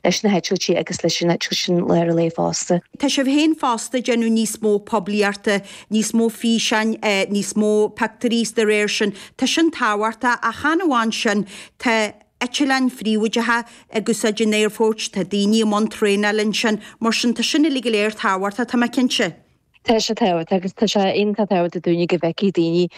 leis na heitiltí agus leis an tús sin lá ar léith fosta. Tá sibh féin fosta ag déanamh níos mó poiblíochta, níos mó físeán, níos mó pictiúirí is de réir sin tá sin tábhachta ach chan amháin sin, tá eitileáin phríobháideacha ag úsáid an aerfoirt, tá daoine i mbun traenáil ansin mar sin tá sin uilig go léir tábhachta, tá mé cinnte. Tá sé tábhachta agus tá sé iontach tábhachta dúinne go bhfeicfidh daoine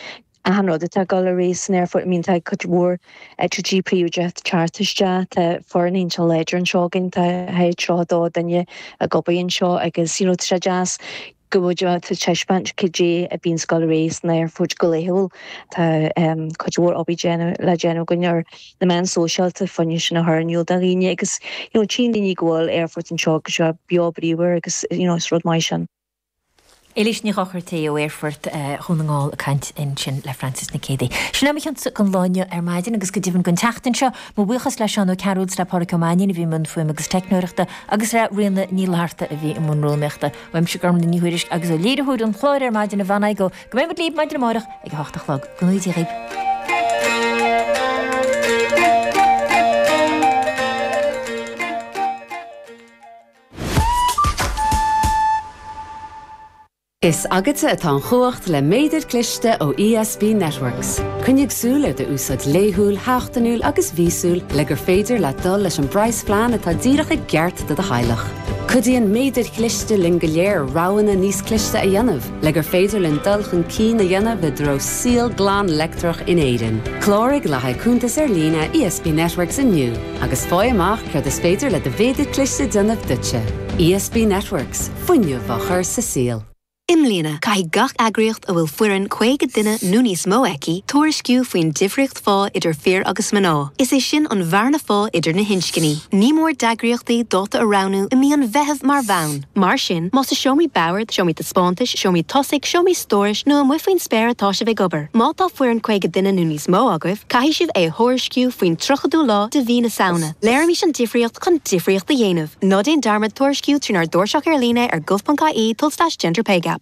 Achan rud atá ag dul ar aghaidh san aerfort, I mean tá cuid mhór eitilt príobháideach teacht isteach, tá foireann iontach láidir anseo againn, tá 32 duine ag obair anseo agus you know tá sé deas go bhfuil tú ag taispeáint cad é a bíonn ag dul ar aghaidh san aerfort go laethúil, tá em cuid mhór obair le déanamh againn ar na meáin sóisialta, fá choinne sin a chur in iúl do dhaoine agus you know tchíonn daoine go bhfuil aerfort anseo go beo bríomhar agus you know is rud maith sin. Eilís Ní Dhochartaigh ó aerfort Dhún na nGall ag caint ansin le Frances Nic Géadaigh. Sin é mo chion-sa don lá inniu ar maidin agus go deimhin don tseachtain seo. Mo bhuíochas le Seán Ó Cearúil 's le Pádraig Ó Mainín a bhí i mbun fuaime agus teicneoireachta agus le Ríona Ní Fhlatharta a bhí i mbun rúnaíochta. Uaimse Gormfhlaith Ní Thuairisg agus ó léiritheoir an chláir ar maidin Eibhlín Ní Chadhain. Go mbeimid libh maidin amárach ag a hocht a chlog. Go n-éirí dhíbh. Is agatsa atá an chumhacht le méadar cliste ó ESB Networks. Coinnigh súil ar d'úsáid laethúil, sheachtainiúil agus mhíosúil le gur féidir leat dul leis an bpraghasphlean atá díreach i gceart do do theaghlach. Cuidíonn Méadair Chliste linn go léir roghanna níos cliste a dhéanamh le gur féidir linn dul chun cinn a dhéanamh i dtreo saol glan leictreach in Éirinn. Cláraigh le haghaidh cuntas ar líne ESB Networks inniu. agus fáigh amach céard is féidir le do mhéadar cliste a dhéanamh duitse. ESB Networks, fuinneamh á chur sa saol. I mbliana, caithfidh gach eagraíocht a bhfuil foireann 50 duine nó níos mó aici tuairisciú faoin difríocht phá idir fir agus mná. Is é sin an bhearna phá idir na hinscní. Ní mór d'eagraíochtaí dáta a roghnú i mí an Mheithimh mar bhonn. Mar sin, más i seomraí boird, seomraí taispeántais, seomraí tosaigh, seomraí stórais nó amuigh faoin spéir atá sibh ag obair, má tá foireann 50 duine nó níos mó agaibh, caithfidh sibh é a thuairisciú faoin 30ú lá de mhí na Samhna. Léirímis an difríocht chun difríocht a dhéanamh. Ná déan dearmad tuairisciú trínár dtairseach ar líne ar gov.ie tulslais gender pay gap.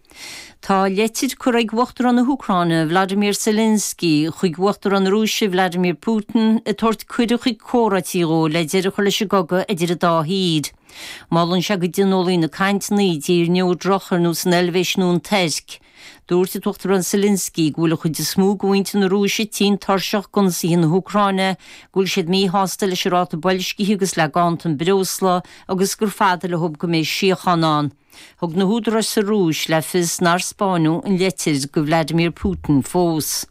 Tá leitir curtha ag Uachtarán na hÚcráine Volodymyr Zelenskyi chuig Uachtarán na Rúise Vladimir Putin ag tabhairt cuireadh chuig comhráití dhó le deireadh a chur leis an gcogadh idir an dá thír. Molann sé go dtionólfaí na cainteanna i dtír neodrach ar nós an Eilvéis nó an Tuirc. Dúirt an tUachtarán Zelenskyi go bhfuil an chuid is mó de mhuintir na Rúise tinn tuirseach d'ionsaithe na hÚcráine, go bhfuil siad míshásta leis an ráta boilscithe agus le ganntan breosla agus gur fada leob go mbeidh síochán ann. Thug na húdaráis sa Rúis le fios nár 'spáineadh' an leitir go Vladimir Putin fós.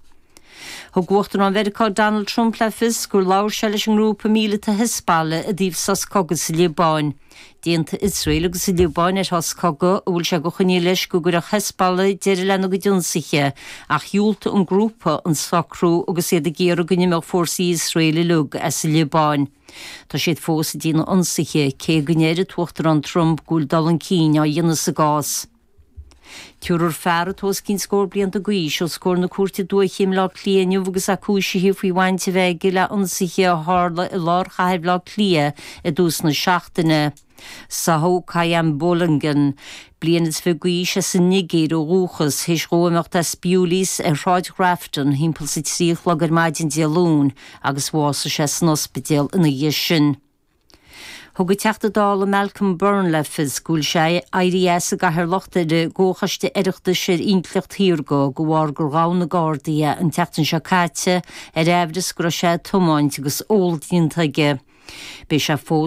Thug Uachtarán Mheiriceá Donald Trump le fios gur labhair sé leis an ngrúpa míleata Hezbollah i dtaobh sos cogaidh sa Liobáin. D'aontaigh Iosrael agus an Liobáin ar shos cogaidh, a bhfuil sé de choinníoll leis go gcuirfeadh Hezbollah deireadh lena gcuid ionsaithe, ach dhiúltaigh an grúpa an socrú agus iad ag iarraidh go n-imeodh fórsaí Iosrael uilig as an Liobáin. Tá siad fós ag déanamh ionsaithe, cé go ndeir an tUachtarán Trump go bhfuil dul chun cinn á dhéanamh sa gcás. Tabharfar fear atá os cionn scór blianta d'aois os comhair na cúirte dúiche i mBleá Cliath inniu agus é cúisithe faoi bhaint a bheith aige le hionsaithe a tharla i lár chathair Bhleá Cliath i dtús na seachtaine. Sádh Qayyum Balogun, bliain is fiche d'aois as an Nigéir ó dhúchas, théis dhó imeacht as Bewley's ar Shráid Grafton thimpeall is a trí a chlog ar maidin Dé Luain agus bhásaigh sé san ospidéal ina dhiaidh sin. Thug an Teachta Dála Malcolm Byrne le fios go bhfuil sé ag éirí as an gcathaoirleacht ar an gComhchoiste Oireachtais ar Intleacht Shaorga de bharr gur ghabh na Gardaí é an tseachtain seo caite ar aimhreas go raibh sé ag tiomáint agus ól déanta aige. Beidh sé fós